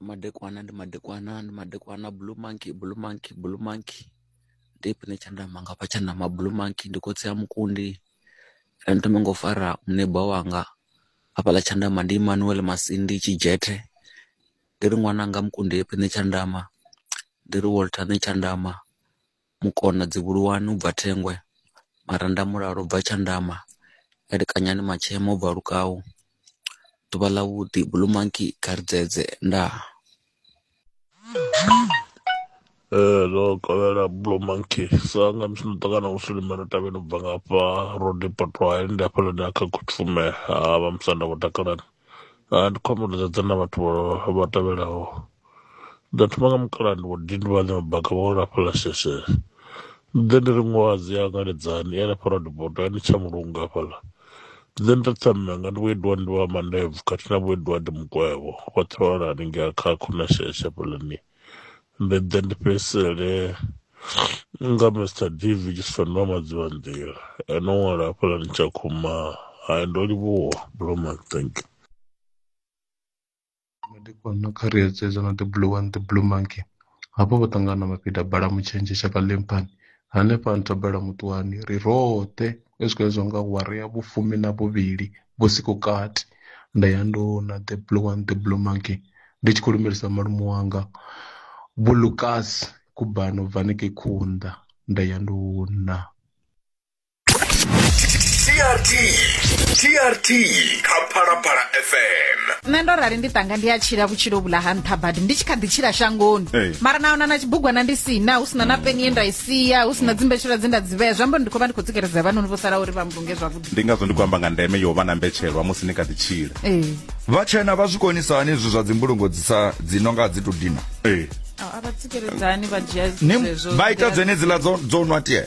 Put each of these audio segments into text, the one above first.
Madekwana ndi madekwana ndi madekwana, blue monkey blue monkey blue monkey ndi ifhio tshine tsha nda amba nga hafha tsha nda amba blue monkey ndi khotsi a Mukundi ri thome nga u fara muneba wanga hafhaḽa Tshandama ndi Emmanuel Masindi Tshidzhethe ndi ri ṅwananga Mukundi ndi ifhio tshine tsha nda amba ndi ri Walter Tshandama. Mukona Dzivhuluwani u bva Thengwe, Maranda Mulalo u bva Tshandama, Elekanyani Matshema u bva Lukau, Ḓuvha ḽa Vhuḓi, Blue Monkey, Kha ri dzedze, Ndaa. Ee ndo kovhela blue monkey sa nga musi ndo ṱangana na mushumo ndo tevhela ubva nga hafha road potwa ndi hafhaḽa nda kha khutshumela ha vha musanda vho takalani. ha ndi khou amba uri dzedza na vhathu vha- vha tevhelaho nda thoma nga mukala ndi wadini vhane mabaka vha wela fhala sheshe nṋe ndi ri ṅwazi ya ngaledzani ya lapha radibodo ya ni tsha mulungu hafhaḽa nṋe ndi ri tsamanga ndi vhoediwa ndi vha mandebvu khathihi na vhoediwa ndi mukwevho vhoṱhe vha wela haningei kha khona sheshe hafhaḽani ndi ḓe ndi fhedzisele nga mr dv tshifanwa madziwa nḓila eno ṅwala hafhaḽani tsha khuma hai ndo livhuwa bloman thank you madekwana kha ri edzedza na the blue one the blue monkey hafho vho ṱangana mafhida bala mutshenzhe shaka ḽemphani Hanefha a ntobela muṱwani, ri roṱhe ri tshi khou hezwa nga awara ya vhufumi na vhuvhili vhusiku kati, nda ya nduna The Blue One, The Blue Monkey, ndi tshi khou lumelisa malume wanga Vho Lukas Kubana u bva hanengei Khunda, nda ya nduna. trt trt kha phalaphala fm nṋe ndo rali ndi tanga ndi a tshila vhutshilo vhula ha nṱha badi ndi tshi kha ḓi tshila shangoni Ee. mara na ona na tshibugwana ndi sina hu sina na peni ye nda i sia hu sina dzimbetshela dze nda dzi vhea zwi amba uri ndi khou vha ndi khou tsikeledza vhanoni vho sala uri vha mbunge zwavhuḓi ndi ngazwo ndi khou amba nga ndeme yo vha na mbetshelwa musi ni kha ḓi tshila ee vhatshena vha zwi konisa hani izwi zwa dzimbulungo dzi sa dzi no nga dzi to dina ee a vha tsikeledzani vha dzhia Ni- vha ita dzenedziḽa dzo dzo nwa tie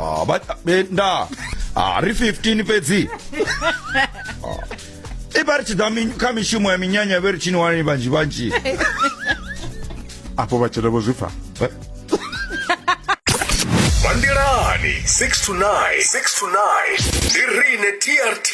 ah ba be nda ah ri 15 fhedzi Ah. i vha ri tshi ḓa mi- kha mishumo ya minyanya vhe ri tshini wani vhanzhi vhanzhi afho vhatshela vho zwi pfa Bandelani 6 to 9 6 to 9 ndi rine TRT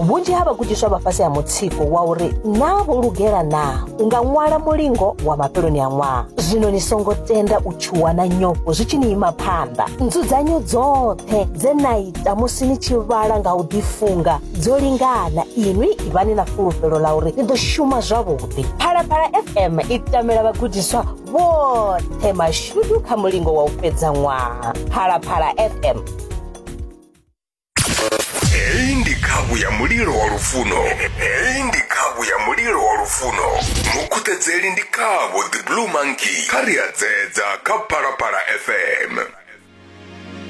vhunzhi ha vhagudiswa vha fhasi ha mutsiko wa uri naa vho lugela naa u nga ṅwala mulingo wa mafheloni a ṅwaha zwino ni songo tenda u tshuwa na nyofho zwi tshi ni ima phanḓa nzudzanyo dzoṱhe dze na ita musi ni tshi vhala nga u ḓifunga dzo lingana inwi ivhani na fulufhelo ḽa uri ni ḓo shuma zwavhuḓi phalaphala fm i tamela vhagudiswa vhoṱhe mashudu kha mulingo wa u fhedza ṅwaha phalaphala fm heyi ndi khavhu ya mulilo wa lufuno heyi ndi khavhu ya mulilo wa lufuno mukhuṱedzeli ndi khavho the blue monkey kha ri a dzedza kha phalaphala fm